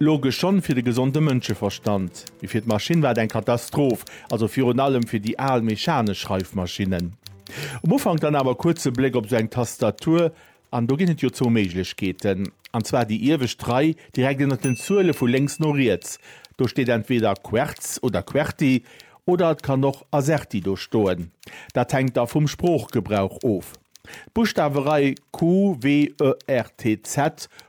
Logesch schonn fir de gesonde Mënscheverstand, mee fir d'Maschinn war et eng Katastroph, also virun allem fir déi al mechanesch Schreifmaschinnen. Um Ufank dann awer kuerz e Bléck op esou eng Tastatur, an do ginn et jo zwou Méiglechkeeten, an zwar déi iewescht Rei, direkt ënnert den Zuele vu lénks no riets. Do steet entweder Quertz oder Querti, oder et kann och Azerti do stoen, dat hänkt da vum Sproochgebrauch of. D'Buschtawerei QWERTZ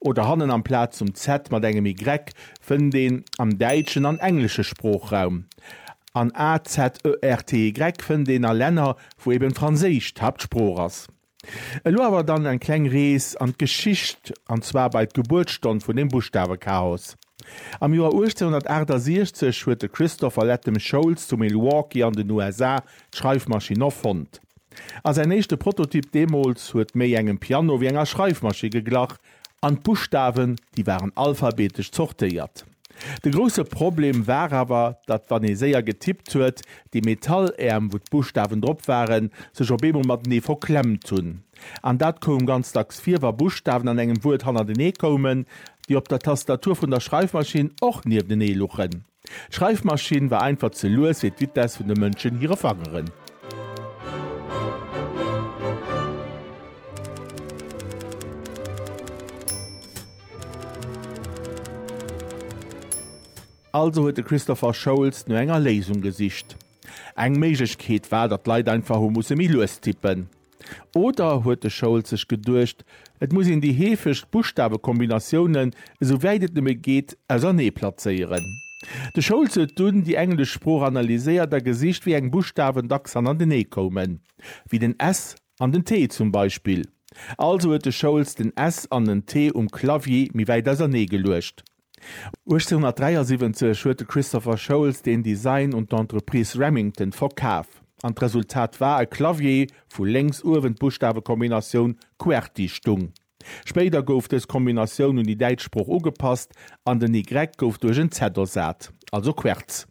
oder hannen amplaz zum Z mat engem Y fënnt een am däitschen an englesche Sproochraum. An AZERTY fënnt een a Länner, wou eben Franséisch d'Haaptsprooch ass. Elo awer dann eng kleng Rees an d'Geschicht, an zwar bei d'Gebuertsstonn vun dem Buschtawechaos. Am Joer 1868 huet de Christopher Latham Sholes zu Milwaukee an den USA d'Schreifmaschinn erfonnt. A säin éischte Prototyp deemools huet méi engem Piano wéi enger Schreifmaschi geglach, an d'Buschtawen, déi waren alphabetesch zortéiert. De grousse Problem war awer, datt wann ee séier getippt huet, déi Metalläerm, wou d'Buschtawen drop waren, sech op eemol matenee verklemmt hunn. An dat koum ganz dacks vir, wa Buschtawen an engem Wuert hannertenee koumen, déi op der Tastatur vun der Schreifmaschinn och nieftenee luchen. D'Schreifmaschinn war einfach ze lues fir d'Vitesse vun de Mënschen hire Fangeren. Also huet de Christopher Sholes no enger Léisung gesicht. Eng Méiglechkeet war, datt d'Leit einfach hu musse méi lues tippen. Oder huet de Schold sech geduecht, et muss een déi heefegst Buschtawekombinatiounen, esou wäit et nëmme geet, ausernee plazéieren? De Schold huet dunn déi englesch Sprooch analyséiert a gesicht, wéi eng Buschtawen dacks hannertenee koumen, wéi den S an den T zum Beispill. Also huet de Schold den S an den T um Clavier méi wäit ausernee geluecht. 1873 huet de Christopher Sholes den Design un d'Entreprise Remington verkaf, an d'Resultat war e Clavier, wou lénks uewen d'Buschtawekombinatioun Qwerty stung. Spéider gouf dës Kombinatioun un déi däitsch Sprooch ugepasst, an den Y gouf duerch en Z ersat, also Querz.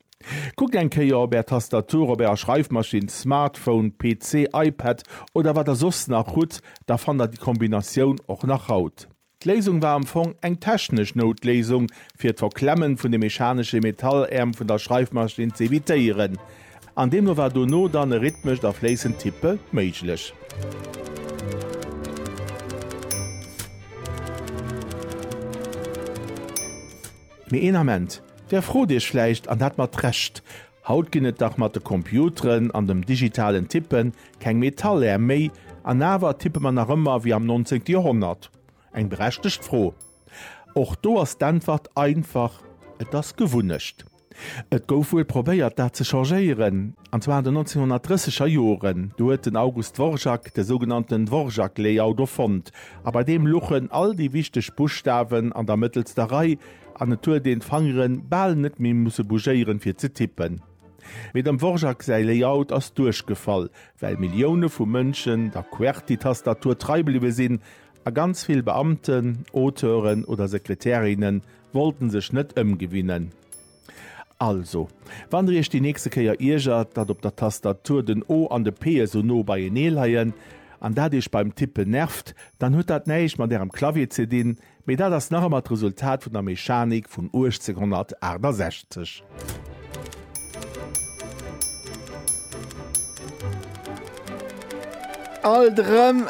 Kuckt eng Kéier op Är Tastatur, op Ärer Schreifmaschinn, Smartphone, PC, iPad oder wat Der soss nach hutt, da fannt Der déi Kombinatioun och nach haut. D'Léisung war am Fong eng technesch Noutléisung, fir d'Verklemmen vun de mechanesche Metalläerm vun der Schreifmaschinn ze evitéieren. An deemno war dono dann e rhythmescht a fléissend Tippe méiglech. Mee een Ament, Der frot Iech vläicht, an dat mat Recht, Haut ginn et dach mat de Computeren an dem digitalen Tippen Keng Metallär méi, an awer tippe mer nach ëmmer wéi am 19. Joerhonnert? Eng berechtegt Fro. Och do ass d'Äntwert einfach, Et ass Gewunnecht. Et gouf wuel probéiert, dat ze changéieren, an zwar an den 1930 er Joren. Do huet den August Dvorak de sougenannten Dvorak-Layout erfonnt, a bei deem luchen all déi wichteg Buschtawen an der mëttelster Rei, an et huet een d'Fangeren bal net méi musse bougéieren, fir ze tippen. Mee dem Dvorak säi Layout ass duerchgefall, well Millioune vu Mënschen der Qwerty-Tastatur trei bliwwe sinn, a ganz vill Beamten, Auteuren oder Sekretärinne wollten sech net ëmgewinnen. Also, wann der iech déi nächste Kéier iergert, datt op der Tastatur den O an de P esou no beienee leien, an dat iech beim Tippen nervt, dann huet dat näischt mat ärem Clavier ze dinn, Mee dat ass nach ëmmer d'Resultat vun der Mechanik vun 1868. Alt erëm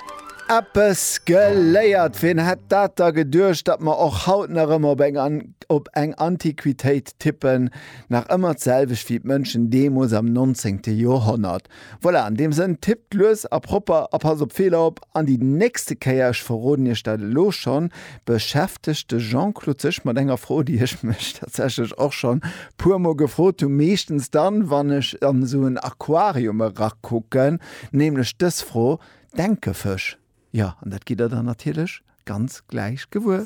eppes geléiert! Ween hätt dat da geduecht, datt mer och haut nach ëmmer op eng an op eng Antiquitéit tippen. Nach ëmmer d'selwecht wéi d'Mënschen deemools am 19. Joerhonnert. Voilà, an deem Sënn, tippt lues a propper a passt op Feeler op. An déi nächste Kéier, ech verroden Iech dat elo schonn, beschäftegt de Jean-Claude sech mat enger Fro, déi ech mech tatsächlech och schonn puer Mol gefrot hunn, meeschtens dann, wann ech an esou en Aquarium erakucken, nämlech dës Fro, Denke Fësch? Jo, an dat gitt Der dann natierlech ganz gläich gewuer.